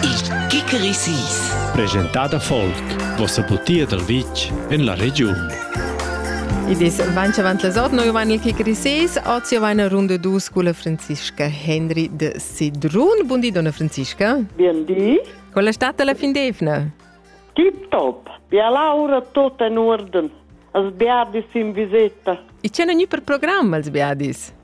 Il Kikeri Sis. Presentada folk, vossa butia dal vitg en la regiun. Id es vainch avant las 8, noi vain il Kikeri Sis, ozi vain a runde dus cu la Franziska Henry de Sedrun. Bundi, donna Franziska. Bien di. Con la stata la fin d'evna? Tip top. Bia laura tota in orden. Als biadis in viseta. E c'è ogni per programma als biadis?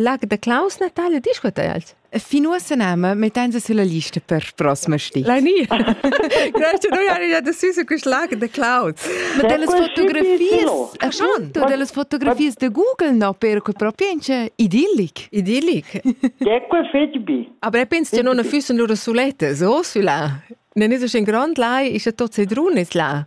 Lag da Klaus Natale discuta els. E fin uossa nama mettenza sulla lista per prossima sti. Lai ni. Grazie noi hari già deciso quest lag de Klaus. Ma delle fotografies, ach schon, tu delle fotografies de Google no per que propience idillic. Idillic. Ecco fetg bi. Aber ich penso che non fussen loro sulette, so sulla. Ne ne so in grand lai ist ja tot sedrunes là.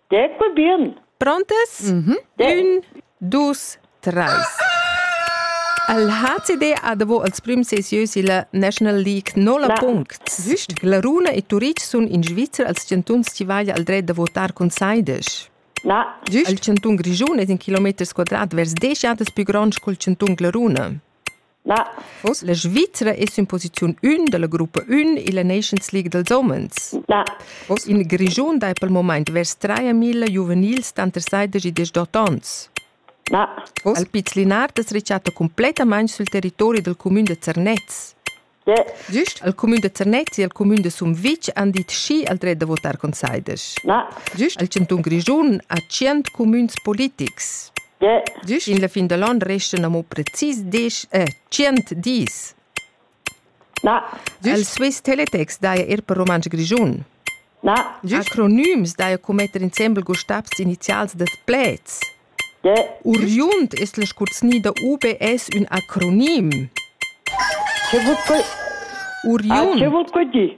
Detto bien. Prontes? Mm -hmm. Un, dus, treis. El HCD ha davo als prüms ses ieus illa National League no la punct. Güst? La Runa e Turic sun in Svizra als chantuns chi vaja al dret da votar cun saides. Na. Güst? Il chantun Grischun es in kilometers quadrat vers desch jadas pü gronds col chantun Glaruna. Vos la Svizra es in posiziun ün da la gruppa ün illa Nations League dals homens. Vos in Grischun dai pel momaint vers traia milla giuvenils tanter saidesch e deschdot ons. Vos al Piz Linard es rechatta cumplettamaing sül territori dal cumün da Zernez. Giust al cumün da Zernez e al cumün da Sumvitg han dit schi al dret da votar con saidesch. Giust al chantun Grischun ha tschient cumüns politics. Gin la fin da l'on restan amo precis desch e tschient dis. Na. Il Swiss Teletex daja eir per rumantsch grischun. Na. Acronims daja co metter insembel gustabs inizials dad pleds. Uriund es la scurzní da UBS ün acronim. Che vul dir? Uriund. Ah, che vul dir?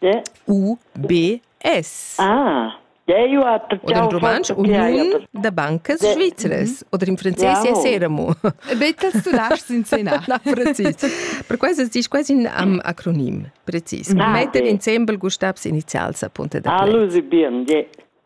D U B S. Ah. Eu ha Oder in rumantsch Uniun da bancas svizras oder in franzés ja seramo. Bettas tu laschs inscenar. Na, precis. Per questo dici quasi un am acronim, precis. Ah, Metter okay. insembel Gustavs inizials a punta da Ah, Lucy bien, yeah.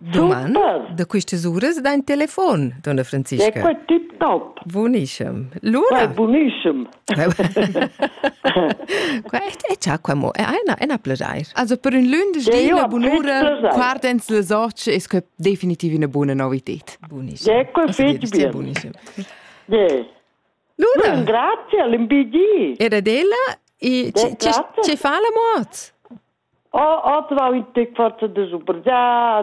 Doman da quistas uras da in telefon, donna Franziska. È quel tip top? Bunischem. Luna? Bunischem. Qua è già qua mo, è una, una pledair. Also per un lunedì la bunura guardens les occhi è que definitiv una buona novità. Bunischem. È quel fitch bien. Bunischem. Luna. Un grazie all'MBG. Era d'ella e ci fa la mort. Ho, ho trovato il forza di supergià,